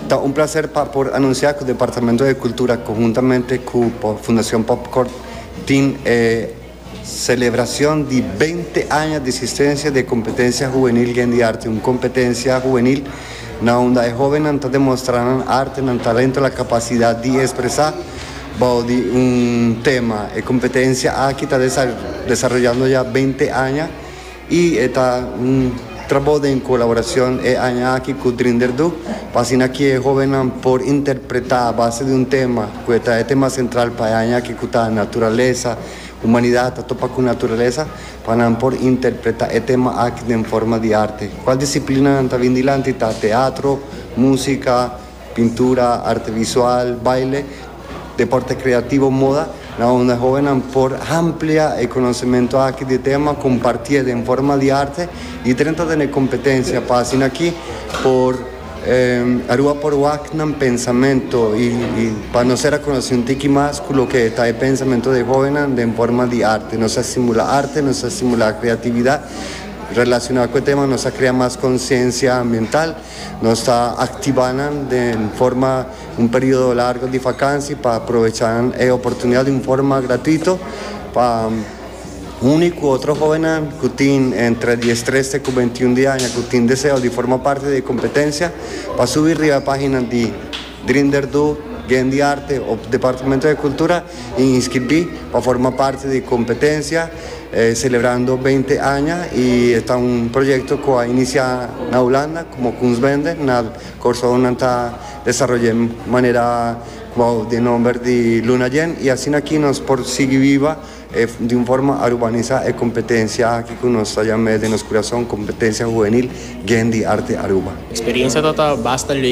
Ta un placer pa por anuncia cu Departamento de Cultura conjuntamente cu Fundacion Popcorn tin e celebracion di binte aña di existencia di e competencia huvenil Yen di Arte, un competencia huvenil na unda e hobennan ta demostra nan arte, nan talento, la capacidad di expresa bao di un tema. E competencia aki ta desaroyando ya binte aña. Y e ta un trabou den colaboracion e aña aki cu Drinder do, pa asina cu e hobennan por interpreta a base di un tema cu e ta e tema central pa e aña aki cu ta Naturalesa, Humanidad ta topa cu Naturalesa, pa nan por interpreta e tema aki den forma di arte. Cual disciplinanan ta bin dilanti ta Teatro, Musica, Pintura, arte visual, baile, deporte kreativo, moda, na unda hobennan por hamplia e konosementu aki di tema, kompartié den forma di arte i drenta den e kompetensia pa asin'aki por Aruba por wak nan pensamentu i pa nos ser a konosé un tiki mas ku loke ta e pensamentu di e hobennan den forma di arte. Nos a estimulá arte, nos a estimulá kreatividat relashoná ku e tema, nos a krea mas konsiensia ambiental. Nos ta activa nan den forma un periodo largo di vakansi pa provecha nan e oportunidad di un forma gratuito pa uni cu otro hobennan cu tin entre diestreste cu beintiun di aña cu tin deseo di forma parte di e competencia pa subi riba e pagina di Grinder do Bien di Arte op Departamento di Kultura i inskribí pa forma parti di kompetensia Celebrando Beinti Aña i e ta un proyekto ku a inisiá na Hulanda komo Kunstbende na Kòrsou nan ta desaroy'é manera ku bou den nòmber di Luna Yen i asina aki nos por sigui biba di un forma arubanisá e kompetensia aki ku nos ta yam'é den nos kurason Kompetensia Huwenil Bien di Arte Aruba. Eksperensia ta ta basta.